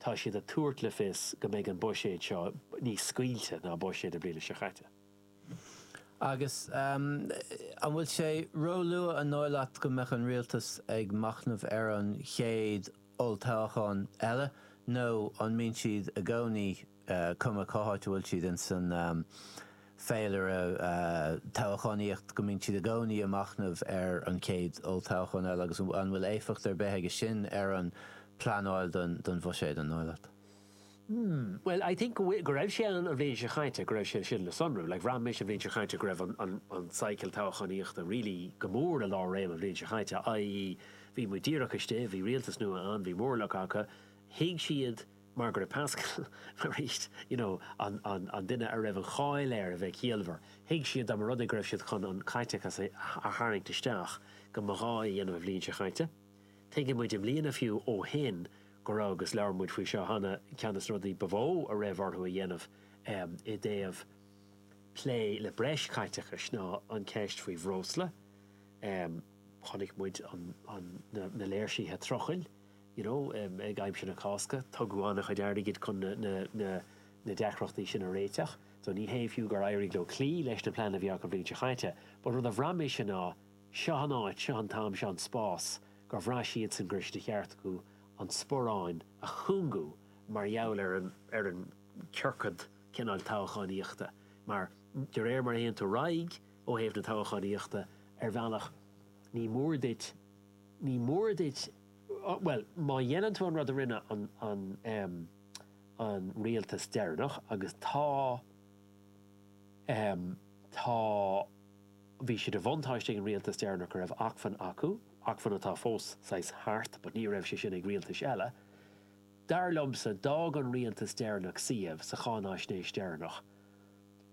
Tá siad ag tabhairt le fios go mbeidh an buiséad seo níos scaoilte ná buiséad na bliana seo caite agus an bhfuil sé róluath an dóigh leat go mbeadh an rialtas ag machnamh ar an chéad olltoghchán eile nó an mbíonn siad i gcónaí cuma cá háit a bhfuil siad ins an féilire toghchánaíochta, go mbíonn siad i gcónaí ag machnamh ar an chéad olltoghchán eile agus an bhfuil éifeacht ar bith aige sin ar an pleanáil don bhuiséad, an dóigh leat? Hmm, bhuel, I think go raibh sé ann an bhliain seo chaite, go raibh sé sin le sonrú. Like, bhraith mise an bhliain seo chaite go raibh an cycle toghchánaíochta really go mór i lár réim an bhliain seo chaite, i.e. bhí muid díreach istigh, bhí rialtas nua ann, bhí móramh acu, thuig siad, mar gheall ar Paschal, arís, you know, an, an, an duine a raibh an cháil air a bheith ciallmhar, thuig siad dá mba rud é go raibh siad chun an caiteachas a, a tharraingt isteach, go mba ghá é a dhéanamh an bhliain seo chaite. Tuigeann muid i mbliana fiú ó shin go raibh, agus labhair muid faoi seo cheana, ceann de na rudaí ba mhó a raibh orthu a dhéanamh um, i dtaobh plé le breis caiteachais ná an ceist faoi bhreosla. Um, chonaic muid an, an, na, na léirsithe trucail. you know ag aimsir na Cásca tugadh an-chuid airgid chun na deacrachtaí sin a réiteach so ní hé fiú gur éirigh leo cloí leis na pleananna a bhí acu an bhliain seo chaite but rud a bhraith mise ná seo an áit, seo an t-am, seo an spás gur bhraith siadsan gur de cheart acu an sporráin a chúngú mar gheall ar an ar an ciorcad cineál toghchánaíochta mar de réir mar a théann tú ar aghaidh ó thaobh na toghchánaíochta ar bhealach ní mór duit ní mór duit Bhuel, má dhéanann tú an rud a rinne an rialtas deireanach agus tá, tá, bhí sé de bhuntáiste ag an rialtas deireanach go raibh acmhainn acu, acmhainn atá fós saghas thart but ní raibh sé sin ag rialtais eile, dar liomsa d'fhág an rialtas deireanach suíomh sa cháinaisnéis deireanach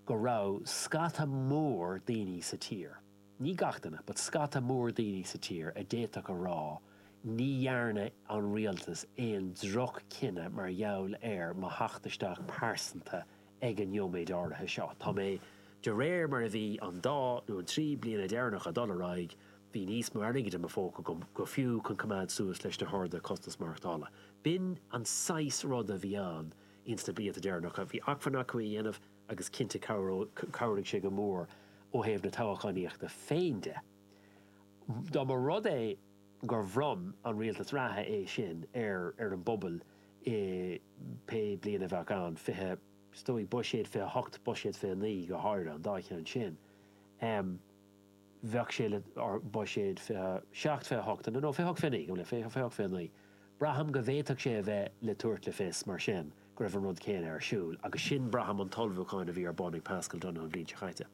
go raibh scata mór daoine sa tír. Ní gach duine, but scata mór daoine sa tír a d'fhéadfadh a rá ní dhearna an rialtas aon droch chinneadh mar gheall ar mo theacht isteach pearsanta ag an nóiméad áirithe seo. Tá mé, de réir mar a bhí an dá nó an trí bliana deireanacha ag dul ar aghaidh, bhí níos mó airgid i mo phóca agam go fiú chun coimeád suas leis na harduithe costas maireachtála. B'in an saghas rud a bhí ann ins na blianta deireanacha. Bhí acmhainn acu é a dhéanamh. agus cinnte chabhraigh sé go mór ó thaobh na toghchánaíochta féin de. Dá mba rud é gur bhronn an rialtas reatha é sin ar ar an bpobal i pé bliain a bheadh ann, fiche, is dóigh, buiséad 28, buiséad 29 go háirithe, an dá cheann sin. bheadh sé le buiséad 27, 28 nó 28, 29, go le 20, 28, 29. Braithim go bhféadfadh sé a bheith le tabhairt le fios mar sin go raibh an rud céanna ar siúl agus sin braithim an t-ullmhúchán a bhí ar bun ag Paschal Donohoe an bhliain seo chaite.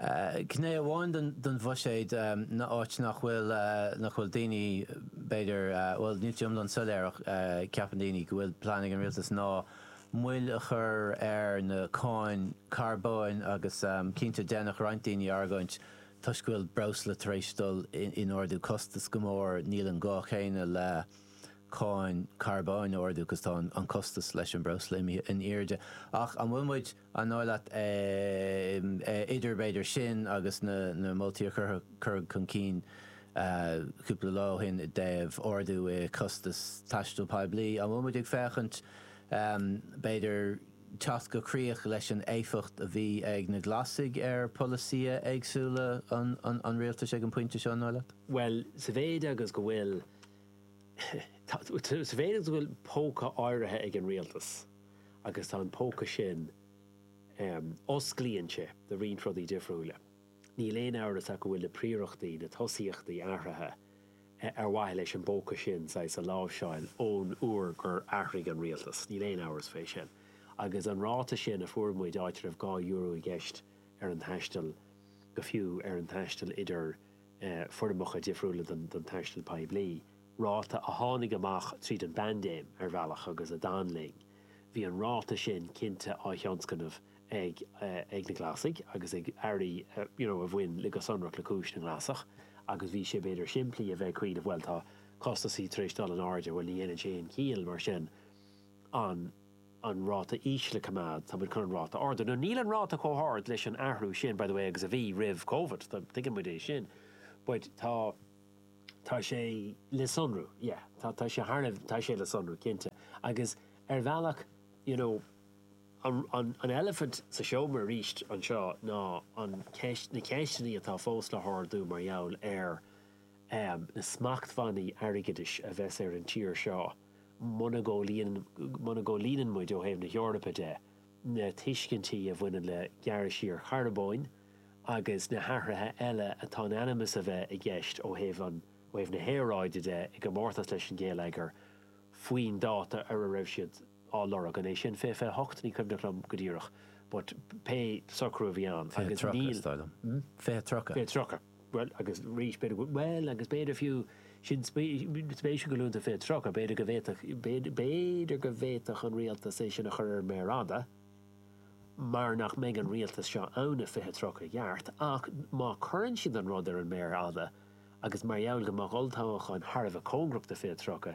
Gné amháin den bhuiséad ná áit nach bhfuil nach bhfuil daoine b'fhéidir bhuel níl sé iomlán soiléir ach ceapann daoine go bhfuil plean ag an rialtas ná moill a chur ar na cáin carbóin agus cinnte déanann roinnt daoine argóint toisc go bhfuil breosla tar éis dul in airde costas go mór níl an gá céanna le cáin carbóin a ardú 'cause tá an costas leis an breosla imithe in airde ach an bhfuil muid an dóigh leat idir b'fhéidir sin agus na na moltaí a cuir cuireadh chun cinn cúpla lá ó shin i dtaobh ardú i costas taistil poiblí an bhfuil muid ag féachaint B'fhéidir teacht go críoch leis an éifeacht a bhí ag na Glasaigh ar pholasaithe éagsúla an rialtais ag an bpointe seo, an dóigh leat? Bhuel, sa mhéid agus go bhfuil, sa mhéid agus go bhfuil póca áirithe ag an rialtas agus tá an póca sin, osclaíonn sé do roinnt rudaí difriúla. Níl aon amhras ach go bhfuil na príorachtaí, na tosaíochtaí athraithe ar mhaithe leis an bpóca sin, saghas, a láimhseáil ón uair gur athraigh an rialtas. Níl aon amhras faoi sin. Agus an ráta sin a fuair muid, áit a raibh dhá euro i gceist ar an taisteal, agus fiú ar an taisteal idir foirmeacha difriúla den taisteal poiblí, ráta a tháinig amach tríd an bpaindéim, ar bhealach, agus a d'fhan linn, bhí an ráta sin cinnte á thionscnamh ag ag na Glasaigh agus ag Airí, you know a bhain le go sonrach le cúis na nGlasach agus bhí sé b'fhéidir simplí a bheith ag cuimhneamh bhuel tá costasaí tar éis dul in airde bhuel ní dhéanann sé aon chiall mar sin an an ráta íseal a coimeád tá muid chun an ráta a ardú now níl an ráta chomh hard leis an athrú sin by the way agus a bhí roimh Covid tá tuigeann muid é sin but tá tá sé le sonrú yeah tá tá sé thar a tá sé le sonrú cinnte agus ar bhealach you know An eilifint sa seomra arís anseo ná an cheist, na ceisteanna atá fós le hardú mar gheall ar na smachtbhannaí airgeadais a bheas ar an tír seo muna gcomhlíonann, muna gcomhlíonann muid ó thaobh na hEorpa de na tuiscintí a bhaineann le gearradh siar charbóin agus na hathruithe eile atá in ainm is a bheith i gceist ó thaobh an, ó thaobh na haeráide de i gcomórtas leis an ngeilleagar faoin dáta ar a raibh siad á lorg. An é sin 20 28? Ní cuimhneach liom go díreach but pé socrú a bhí ann agus níl. 20 30 is dóigh liom. Hmm? 20 30. 20 30. Bhuel agus arís b'fhéidir go bhfuil. Bhuel agus b'fhéidir fiú sin spéisiúil go luann tú 20 30. B'fhéidir go bhféadfadh b'fhéidir go bhféadfadh an rialtas é sin a chur ar an méar fhada mar nach mbeidh an rialtas seo ann i 20 30 i gceart ach má cuireann siad an rud ar an méar fhada agus mar gheall go mbeadh olltoghchán thar a bheith cóngarach do 20 30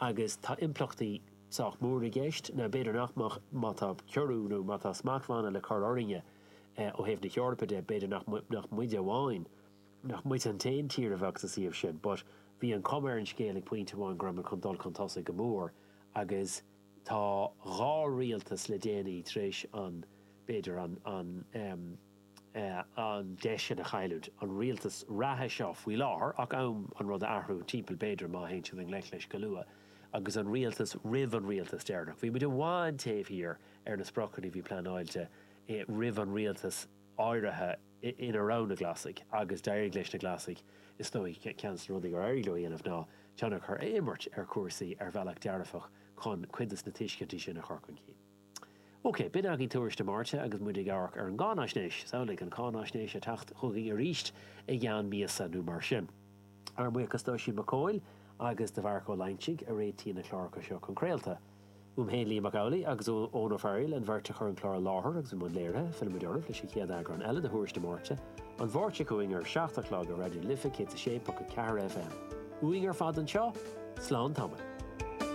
agus tá impleachtaí sách mór i gceist, nó b'fhéidir nach mbeadh má tá ciorrú nó má tá smachtbhanna le cur orainne ó thaobh na hEorpa de, b'fhéidir nach nach muide amháin, nach muid an t-aon tír a bheadh sa suíomh sin but bhí an chuma ar an scéal ag pointe amháin go raibh muid chun dul chun tosaigh go mór agus tá dhá rialtas le déanaí tar éis an b'fhéidir an an an deis sin a chailliúint. An rialtas reatha seo faoi láthair, ach am an rud a athrú timpeall b'fhéidir má théann siad i ngleic leis go luath, agus an rialtas roimh an rialtas deireanach. Bhí muid i bhfad taobh thiar ar na spriocanna a bhí pleanáilte roimh an rialtas áirithe ina raibh na Glasaigh, agus d'éirigh leis na Glasaigh is dóigh. Ceann des na rudaí gur éirigh leo a dhéanamh ná tionchar a imirt ar chúrsaí ar bhealach dearfach chun cuid des na tuiscintí sin a chur chun cinn. OK, b'in agaibh tuairisc na Máirte agus muid ag amharc ar an gcáinaisnéis. Samhlaigh an cáinaisnéis ag teacht chugainn arís i gceann míosa nó mar sin. Ár mbuíochas d'Oisín Mac Cumhaill agus do Mharc Ó Loingsigh a réitíonn na cláracha seo chun craolta. Uaim féin, Liam Mac Amhlaigh, agus ó Eoin Ó Fearaíl, an bheirt a chuir an clár i láthair agus i mbun léirithe, fillfimid oraibh leis an chéad eagrán eile de Thuairisc na Máirte, an Mháirt seo chugainn ar a seacht a chlog ar Raidió na Life 106.4 FM. Uainn ar fad anseo, slán tamaill.